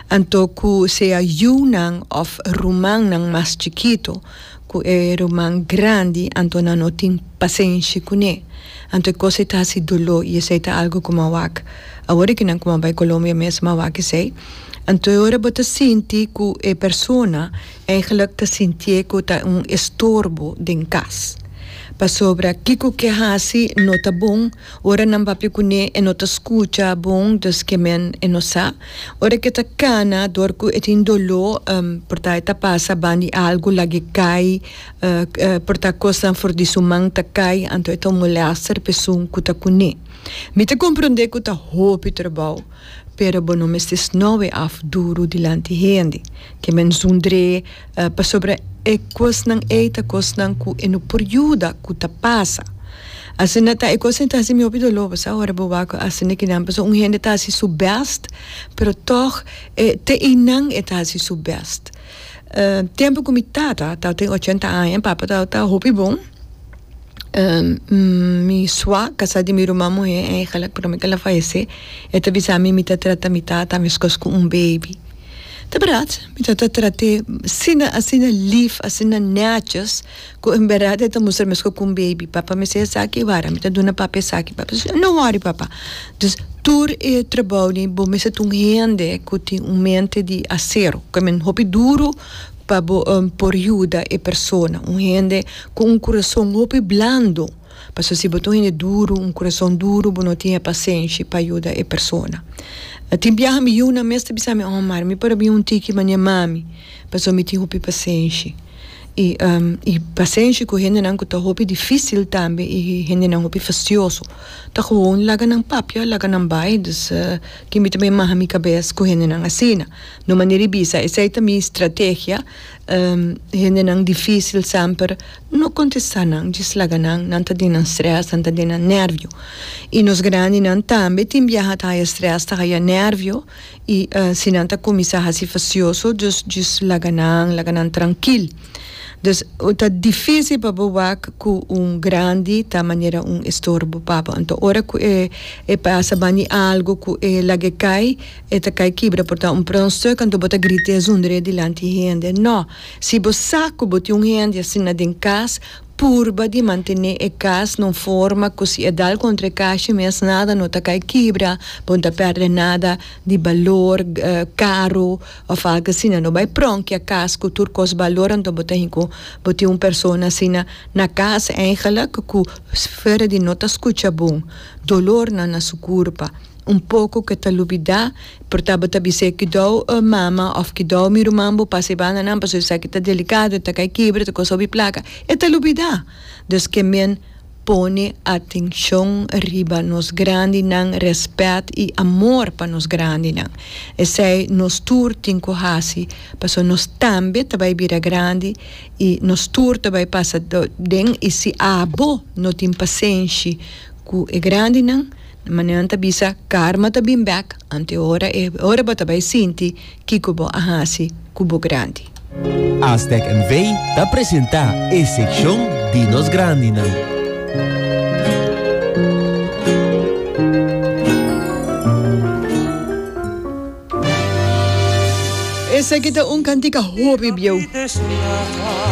Anto ku sea yunan òf rumannan mas chikitu ku e ruman grandi, anto nan no tin pasenshi kuné. Anto e kos ei ta hasi doló i esei ta algu ku mawak. Awor i ku nan kuma bai Colombia mes mawak esei. Anto e ora bo ta sinti ku e persona eiginlik ta sintié ku ta un estorbo den kas. Pasobra kiko ke hasi no ta bon. Ora nan papia kuné e no ta skucha bon, dus ke men e no sa. Ora ke ta kana dor ku e tin doló por ta e ta pasa ban di algu lag'e kai por ta kosnan for di su man ta kai anto e ta un molèster p'esun ku ta kuné. Mi ta komprondé ku ta hopi trabou pero bo no mester sno'e af duru dilanti hende. Ke men zundr'é. Pasobra e kosnan ei ta kosnan ku e no por yuda ku ta pasa. Asina ta e kosnan ei ta hasi mi hopi doló, bo sa, ora bo wak a hasi nekinan. Pasobra un hende ta hasi su bèst, pero tòg e te einan e ta hasi su bèst. Tempu ku mi tata tabata ochenta aña, e papa tabata hopi bon, mi sua kasá di mi ruman muhé, e kalapatronan el a falesé, e ta bisa mi mi ta trata mi tata meskos ku un beibi. Ta brat, mi ta ta trat'é asina, asina lif, asina nètjis, ku en bèrdat e ta mustra meskos ku un beibi, Papa, mi sa esaki e wara, mi ta duna Papa esaki, Papa ta sigi, No wòri, Papa. Dus, tur e trabou dei, bo mester ta un hende ku tin un mente di asero, ku men hopi duru pa bo por yuda e persona, un hende ku un kurason hopi blandu. Paso si bo ta un hende duru, un kurason duru, bo no tin e pasenshi pa yuda e persona. Tin biaha mi yunan mes ta bisa mi, Omar, mi por a bin un tiki manera mami, paso mi tin hopi pasenshi. I, i pasenshi ku hendenan ku ta hopi difisil tambe i hendenan hopi fastioso. Ta gewoon laga nan papia, laga nan bai. Dus, ke mi tambe maha mi kabes ku hendenan asina. No manera di bisa, esei ta mi strategia. Hendenan difísil semper no kontestá nan, djis laga nan, nan ta den nan strès, nan ta den nan nérvio. I nos grandinan tambe tin biaha ta haya strès, ta haya nérvio, i si nan ta kuminsá hasi fasioso, djis djis laga nan, laga nan trankil. Dus, ta difísil pa bo wak ku un grandi ta manera un estorbo pa bo. Anto ora ku e pasa bani algu ku e lag'é kai E ta kai kibra por ta un pronster kantu bo ta grita esondre dilanti hende. Nò, si bo sa ku bo tin un hende asina den kas, purba di mantené e kas na un forma ku si e dal kontra e kashi mes nada no ta kai kibra, bo no ta pèrdè nada di balor karu òf algu asina. No bai prònkia kas ku tur kos balor anto bo ta hin ku bo tin un persona asina na kas, èigelik ku fuera di no ta skucha bon dolornan na su kurpa. Un poko ke ta lubidá, por tabata bis'é kidou mama òf kidou mi ruman bo pasa e bandanan pasobra esaki ta delikado, e ta kai kibra, e ta kos hopi plaka. E ta lubidá. Dus ke men pone atenshon riba nos grandinan, rèspèt i amor pa nos grandinan. Esei nos tur tin ku hasi pasobra nos tambe ta bai bira grandi i nos tur ta bai pasa den i si abo no tin pasenshi ku e grandinan, Manan ta bisa, Karma ta bin bèk anteora e ora bo ta bai sinti kiko bo a hasi ku bo grandi. Aztec NV. ta presentá e sekshon di nos grandinan. Esaki ta un cantica hopi bieu.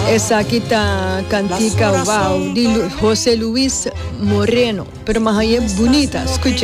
Esaki ta cantica wow di Jose Luis Moreno pero mahaye bunita scuche.